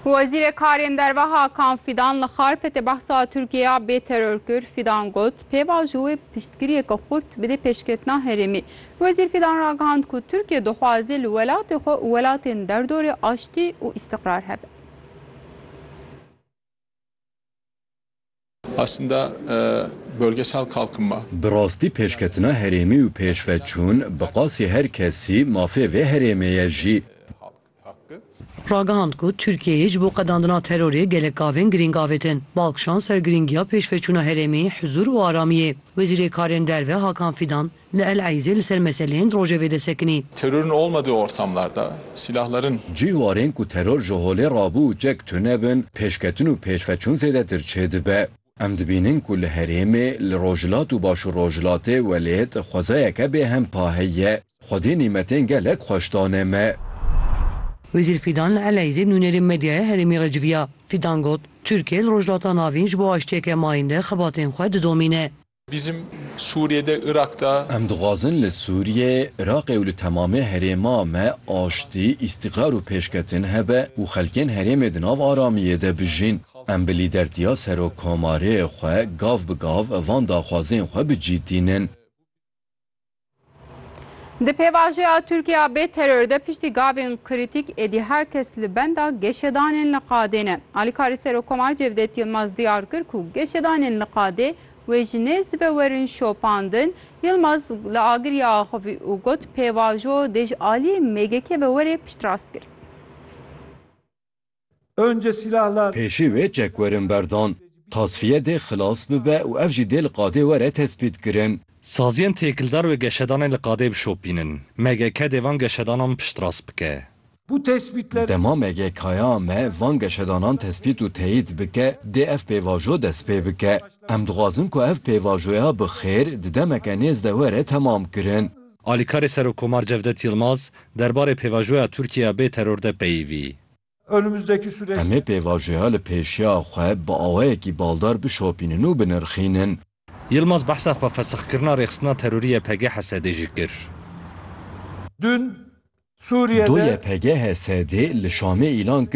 Wezîrê Karên Derve Hakan Fîdan li Xarpêtê behsa Tirkiyeya bê teror kir. Fîdan got, pêva ji wê piştgiriyeke xurt bide pêşketina herêmê. Wezîr Fîdan ragihand ku Tirkiye dixwaze li welatê xwe û welatên derdorê aştî û îstiqrar hebe. Bi rastî pêşketina herêmî û pêşveçûn bi qasî her kesî mafê vê herêmê ye jî. Ragihand ku Tirkiyeyê ji bo qedandina terorê gelek gavên girîng avêtin. Bal kişand ser girîngiya pêşveçûna herêmî, huzûr û aramiyê. Wezîrê Karên Derve Hakan Fîdan. Li El Eizê li ser meseleyên rojevê de sekinî. Terörün olmadığı ortamlarda silahların. Cih warên ku teror ji holê rabû û çek tune bin, pêşketin û pêşveçûn zêdetir çêdibe. Em dibînin ku li herêmê, li rojhilat û başûrrojhilatê welêt xwezayeke bêhempa heye. Xwedê nîmetên gelek xweş dane me. Wezîr Fîdan li El Eizê nûnerên medyaya herêmî re civiya. Fîdan got, Tirkiye li Rojhilata Navîn ji bo aştiyeke mayînde xebatên xwe didomîne. Bizim Suriye de Irak da. Em dixwazin li Sûriyê, Iraqê û li temamê herêma me aştî, îstîqrar û pêşketin hebe û xelkên herêmê di nav aramiyê de bijîn. Em bi lîdertiya Serokkomarê xwe gav bi gav van daxwazên xwe bi cî tînin. Di pêvajoya Tirkiya bê teror de piştî gavên krîtîk êdî her kes li benda geşedanên li qadê ne. Alîkarê Serokkomar Cevdet Yilmaz diyar kir ku geşedanên li qadê wê ji nê zive werin şopandin. Yilmaz li agiriyê axivî û got pêvajo dê ji aliyê MGK ve were piştrast kirin. Pêşî wê çekwerin berdan, tasfiye dê xilas bibe û ev jî dê li qadê were tespîtkirin. Saziyên têkildar wê geşedanê li qadê bişopînin. MGK dê van geşedanan piştrast bike. Dema MGKya me van geşedanan tespît û teyîd bike, dê ev pêvajo dest pê bike. Em dixwazin ku ev pêvajoya bi xêr di demeke nêz de were temamkirin. Alîkarê Serokkomar Cevdet Yilmaz derbarê pêvajoya Tirkiye ya bê teror de peyivî. Em ê pêvajoya li pêşiya xwe bi awayekî baldar bişopînin û binirxînin. Yilmaz behsa xwe fesixkirina rêxistina terorî YPG HSD'ê jî kir. Du YPG HSD'ê li Şamê îlan kir,